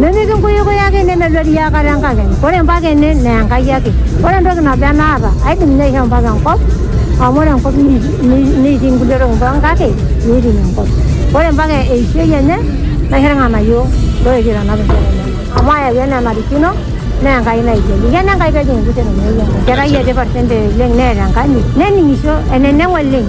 Nemikinguyukui ake nemeluari iakata enkakenya. Ore mpaka ene naa Enkai ake. Ore entoki nabo enaata aidim ninye aishoo mpaka enkop amu ore enkop netii nkulie tokitin pookin kake meiting enkop. Ore mpaka eishoi enye naisho ilng'anayio looetuo aitanap nkera enyenak amu ayawua enaa enarikino naa Enkai naigelu. Eikeno Enkai pee ejing enkitok enye. Enkerai etipat sentei oleng neeta enkanyit nening'isho eneneng oleng.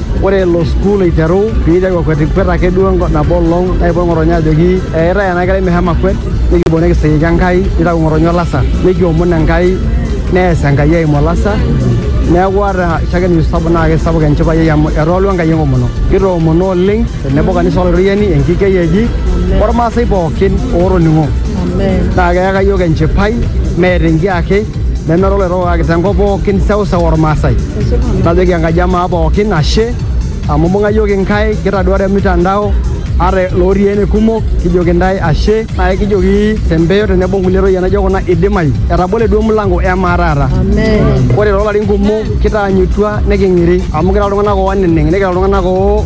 Ore elo sukuul eiteru pee eiteru akwetikwet ake duo enko nabo olong naipotu ng'otonye ajoki eetae ena kerai meshomo akwet nikipuo nikisiriki Enkai neitau ng'otonye olasa nikiomon Enkai nees Enkai eimu olasa neeku ata shakenisho sapuk naa keisapuk enchipai ai amu etoolua Enkai enkomono. Kitoomono oleng tenebo o kanisa Olaitoriani, Enkikei eji olmaasai pookin ootoning'o naa keyaka iyiook enchipai meeta enkiake nemera oloitoka kake tenkop pookin seuseu olmaasai. Najoki enkaji amaa pookin ashe amu imbung'a iyiook inkae kitaduare mitandao ata lotii ene kumok kijoki intae ashe naa kijoki tempeyo tenebo nkulie toyie naijo kuna idimayu etabole duo mlango emaa taata ore toolarin kumok kitaanyutua niking'iri amu kira iltung'anak ooneneng nikira iltung'anak oo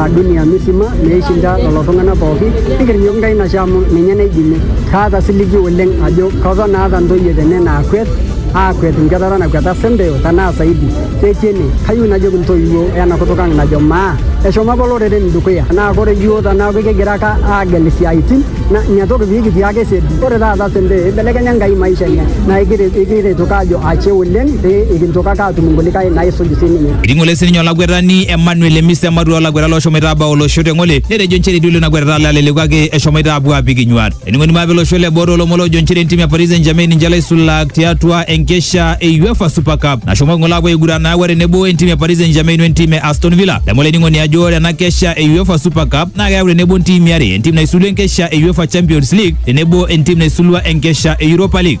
a dunia misima meishinda lelo tung'anak pooki nikirrinyok Nkai nashe amu ninye naidimie. Kaata siligi oleng ajo keton aata ntoyie tene naakwet aakwet nkwetata nakweta Senteo tenaa saidi. Ketii ene. Kayieu najoki ntoiwuo ena kutuk ang najo maa eshomo apa oloreren dukuya. Naa ore iyiook teneeku kigira ake aagel isiaaitin naa ina toki pee kitii ake siadi. Ore taata Senteo eibelekenya Nkai maisha enye naa ekiret ake aajo ashe oleng pee kintoki ake atum inkulikae naisuj sininye. Eting'ole sininye olakwetani Emmanuel Emisa ematua olakwetani loshomoita abau olosho teng'ole netejo nchere etiu lelo kwetata laleleku ake eshomoita apuo apik inyuat. Ening'oni maape olosho le boo toolomon loojo nchere entim e Paris Saint-Germain ninche laisulak tiatua enkesha e UEFA Super Cup nashomo ng'ole apuo aiguran naawa tenebo entim e Paris Saint-Germain wentim e Aston Villa. Edamu olainining'oni ajo ore ena kesha e UEFA Super Cup naa keyau tenebo ntimi are entim naisulua enkesha e UEFA Champions League tenebo entim naisulua enkesha e Europa League.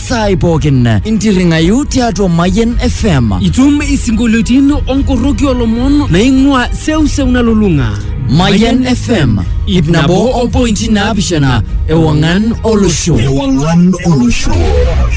saai pookin intirring'ayu tiatua Mayian FM. Itum isinkolioitin onkoroki olomon naing'ua seuseu nalulung'a. Mayian FM, ip nabo o pointi naapishana ewang'an olosho. Ewang'an olosho.